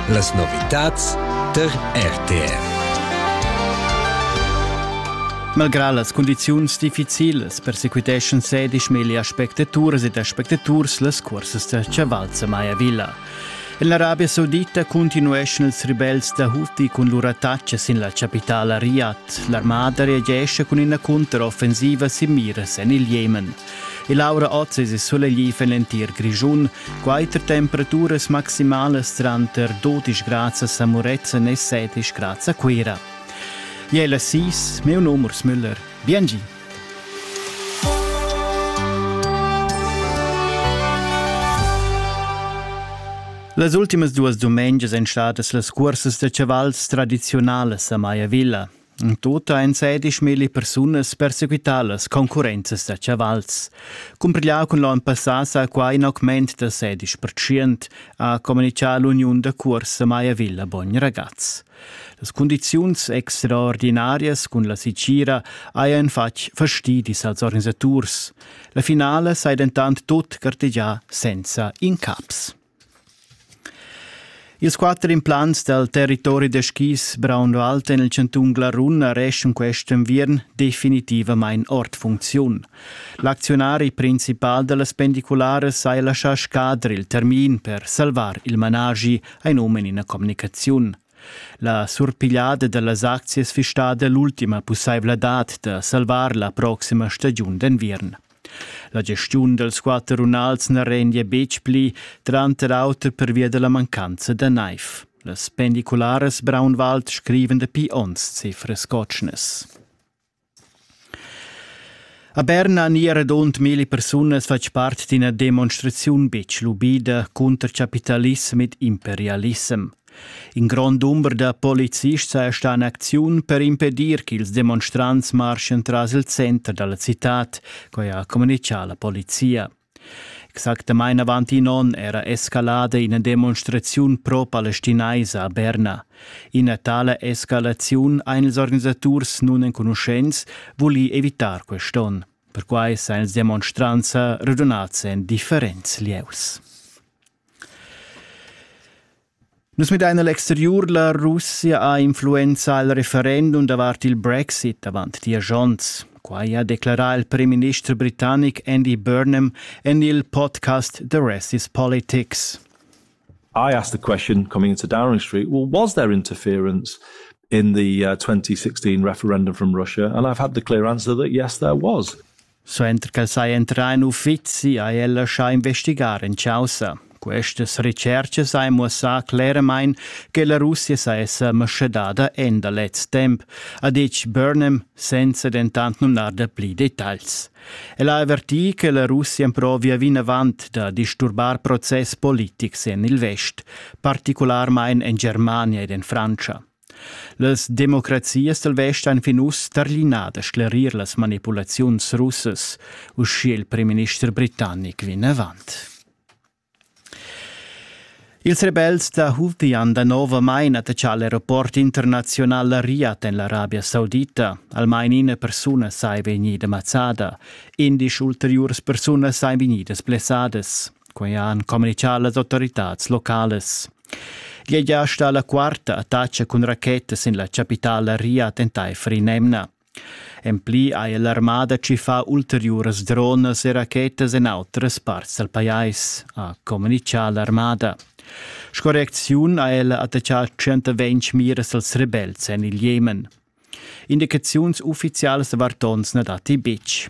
Las novitads tar RTR. Malgrà las cundiziuns difficilas persequiteschan sedisch meglio spectaturas ed aspectaturs las cursas da chavalza Maya Villa. En l'Arabia Saudita continueschan ils ribels da Houthi cun lur attacca sin la chapitala Riyadh. L'armada reagesce cun ina cunteroffensiva sin miras en il Jemen. E l'aura oz es sulegliv en l'entir Grischun. Quatter temperaturas maximalas tranter 12 grads a Murezzan e 17 grads a Cuira. Jela Sis, meu num Urs Müller. Biengi! Las ultimas duas dumengias èn stadas las cursas da chavals tradiziunalas a Maya Villa. Tuta ein sedischmilli persunas persequitalas concurrenzas da chavals. Cumprigliau cun l'onn passà sa qua in augment da sedisch percent, ha communicar l'uniun da cuorsa Maya Villa Bogn Ragaz. Las condiziuns extraordinarias cun la Sicira hajan fatg fastidis als organisaturs. La finala sai dentant tut gartegià senza incaps. Ils quatter implants dal territori da skis Braunwald en il chantun Glarun arreschan quest enviern definitivamain ord funcziun. L'acziunari principal da las pendicularas ha laschà scadre il termin per salvar il managi, ein um in ina communicaziun. La surpigliada da las aczias fistada l'ultima pussaivladad da salvar la proxima stagiun d'enviern. La gestiun dals quatter runals na rendia betg pli, tranter auter pervia da la mancanza da naiv. Las pendicularas Braunwald scriven dapi onns cifras cotschnas. A Berna ni radund mille persunas fatg part d'ina demonstraziun betg lubida cunter capitalism ed imperialissem. In grond dumber da polizists sa è stà en acziun per impedir ch'ils demonstrants marschan tras il center da la citad, quai ha communitgà la polizia. Exactamain avant in onn era escalada ina demonstraziun pro-palestinaisa a Berna. Ina tala escalaziun ein ils organisaturs nunenconuschents vuli evitar quest'onn. Perquai san ils demonstrants redunads en differents lieus. Nus midain a l'exteriur, la Russia ha influenzà il referendum davart il Brexit avant diesch onns. Quai ha declerà il primminister britannic Andy Burnham en il podcast The Rest is Politics. I asked the question coming into Downing Street well, was there interference in the uh, 2016 referendum from Russia? And I've had the clear answer that yes, there was. Suenter ch'el saja entrà en uffizi ha el laschà investigar en chaussa. Questas retschertgas han muossà cleramain che la Russia saja sa maschadada en da lez temp, ha ditg Burnham, senza dentant numnar dapli detagls. El ha avvertì che la Russia emprovia vinavant da disturbar process politics en il vest, particularmain en Germania ed en Frantscha. Las democrazias dal vest han fin uss tarlinà da sclerir las manipulaziuns russas, uschia il primminister britannic vinavant. Ils rebels da Houthi-An danovamain attachà l'aeroport internaziunal Riyadh en l'Arabia Saudita. Almain ina persuna saja vegnida mazzada. Indesch ulteriuras persunas sajan vegnidas blessadas. Quei han communicau las autoritads localas. Glieglia sta la quarta attacca cun rachetas sin la capitala Riad enteifer in'emna. En pli ha l'armada tschiffà ulteriuras dronas e rachetas en outras parts dal pajais, ha communitgà l'armada. Sco reacziun ha ella attaccà 120 miras als rebels en il Jemen. Indicaziuns uffizialas da vartons na datti betg.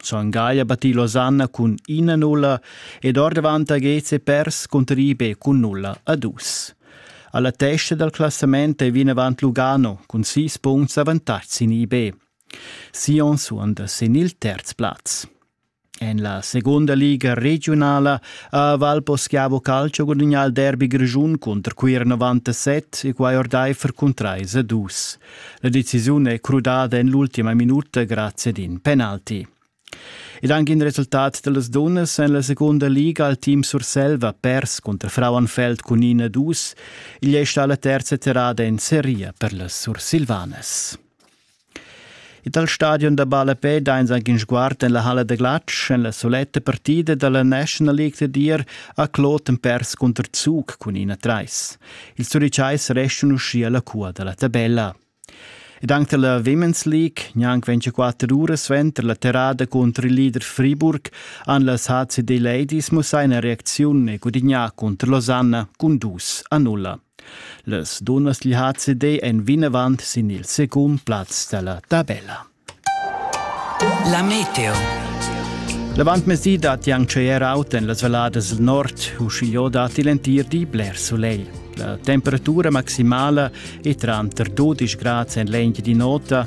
Son Gaglia battì Losanna cun ina nulla ed ordavant a Geze pers cunter Ibe cun nulla a dus. Alla testa dal classament è vinavant Lugano cun sis punts avantatg sin IB. Sion suonda sin il terz plaz. En la seconda liga regionala ha Valposchiavo Calcio gudagnà il derby grischun cunter Cuir 97 e quai ordaifer cun 3 a 2. La decisiun è crudada en l'ultima minuta grazie ad in penalti. Ed anche in resultat delle dunnas en la seconda liga al team Surselva pers contro Frauenfeld con Ina Dus. Igl è stata la terza terrada in seria per le sursilvanes. E dal stadion da ballapè dains anche sguard en la halla da glatsch en la soletta partida da la National League da dir a Kloten pers contr Zug cun ina trais. Il Zurichais restan uschia la cua da la tabella. Ed anche la Women's League, neanche 24 ore suenter la terrada contro il leader Friburg, han las HCD Ladies mussà una reazione e gudignà contro Losanna con 2 a 0. Las dunnas gli ha cedé en vinavant sin il secund plaz dalla tabella. La meteo. L'avantmezdi dat Yang Cher out en las Valladas del Nord, uschigliò dat il entir di bler soleil. La temperatura maximala è tranter 12 grads en l'engi di nota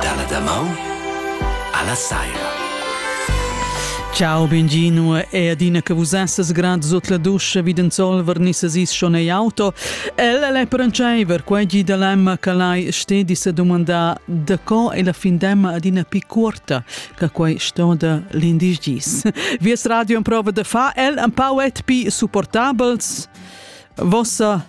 Dalla damaun alla saira. Ciao, benvino e adina che vus essas grad sot la duscha vid in solver nissas is schon ei auto. Ella le prancheiver, quei gi da lemma che lai stedi se domanda da co e la fin demma adina pi cuorta che quei stoda l'indis gis. Vies radio in prova da fa el un pau et pi supportabels. Vossa